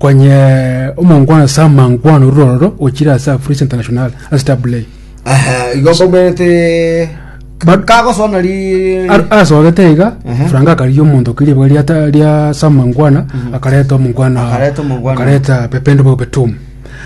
Onye omongwana ase amangwana orure ororo ochire ase Afurisa International ase Tabulei. Aha, igo koberete Ba- kagosoa nari Ar- asogete iga Ehe. Frank akarigia omonto kiri ribuga ria ta- ria samangwana akareta omongwana Akareta omongwana. akareta pepende bobe tum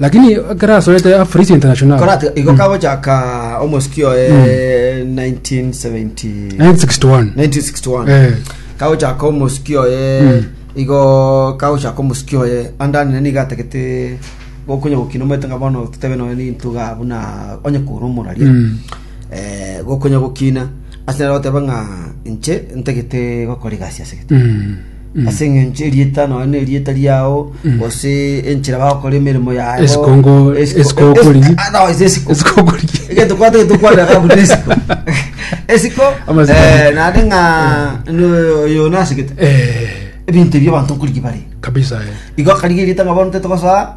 lakini ekero asoete afurisi international Koratiga igo kagochaka omosiki oye 1970 1961 1961 Eh. kagochaka omosiki oye Mm. igo kagochaka omosiki oye andani nani gatagete gokonya gokina omanyete nga bono totebe noyo nintuga buna onye kora omoraria Mm. eh, gokonya gokina ase nero goteba ng'a inche ntagete gokora egasi ase gete Mm. ase engencho erieta nonya na erieta riao gose enchera bagokora emeremo yaye Esiko ngo- esiko okori. Esiko okori. egento kwate getokwana kabuna esiko esiko Amasiko. eh, nare ng'a no- oyo nasigete Eh, ebinto ebio abanto nkorigi bare kabisa eh. igo akarigeria ng'a bono totogosoa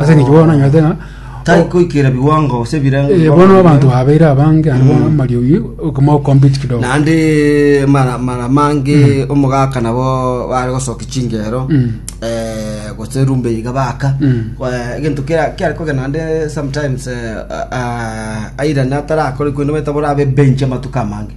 Ase eng'encho bono nanyete ng'a Tari koikera biwango gose ebirengo. eh, bono abanto babeire abange ande bono amariogi okoma okompiti kidogo Naende mara mara mange omogaka nabo bare gosoki chingero. Mm. Eh gose rumbe iga baka. Mm. Eh, Egento kera kiare kogenda naende sometimes eh, ah, airane atarakore koende baita borabe bench amatuko amange.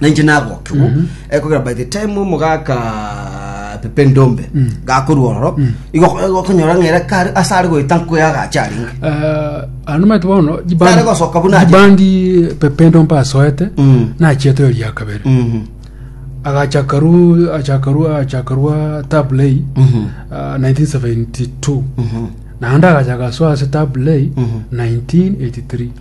na inche nagokigwa ekogera by the time omogaka pepe ndombe gakorwa ororo igo okonyora ng'ere kare ase are goeta nkoya agacha arenge Eh, ano mate bono Tare gosoka buna aje. jibandi pependo mpasoete Mm. nachiete eri ya kabere Mhm. agachakaru achakaru achakarwa tablay Mhm. ah, 1972 Mhm. naende agachaka soa ase tablay Mhm. 1983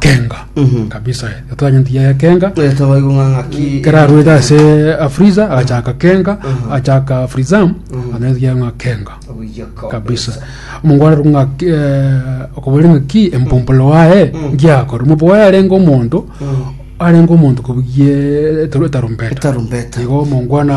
Kenga Mhm. kabisa eh. Tatwanyeti yaya Kenga Eh, tobaigwe ng'a ng'aki kerarwete ase Afriza agachaka Kenga Mhm. achaka Frizam Mhm. ananyeti yaya ng'a Kenga Obuya ko- kabisa omongwana rung'a okobwere ng'aki empumpolo waye Mm. ngiakore omompo waye arenge omonto Mm. arenge omonto kobugie etarumbeta Etarumbeta. igo omongwana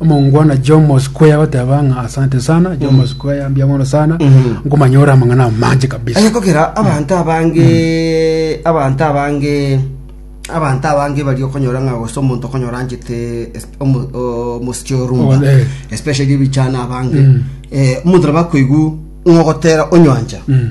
omongwana jomo square goteba ng'a asante sana jomo square mbia mono sana Mhm. nkomanyora amang'ana amanche kabisa aye kogera abanto abange abanto abange abanto abange bari okonyora ng'a gose omonto okonyora anchete es- omo- o- omosiki orumba Oh, eh. especially ebichana abange Mm. Eh, omonto nabo akoigwa ng'ogotera onyancha Mm.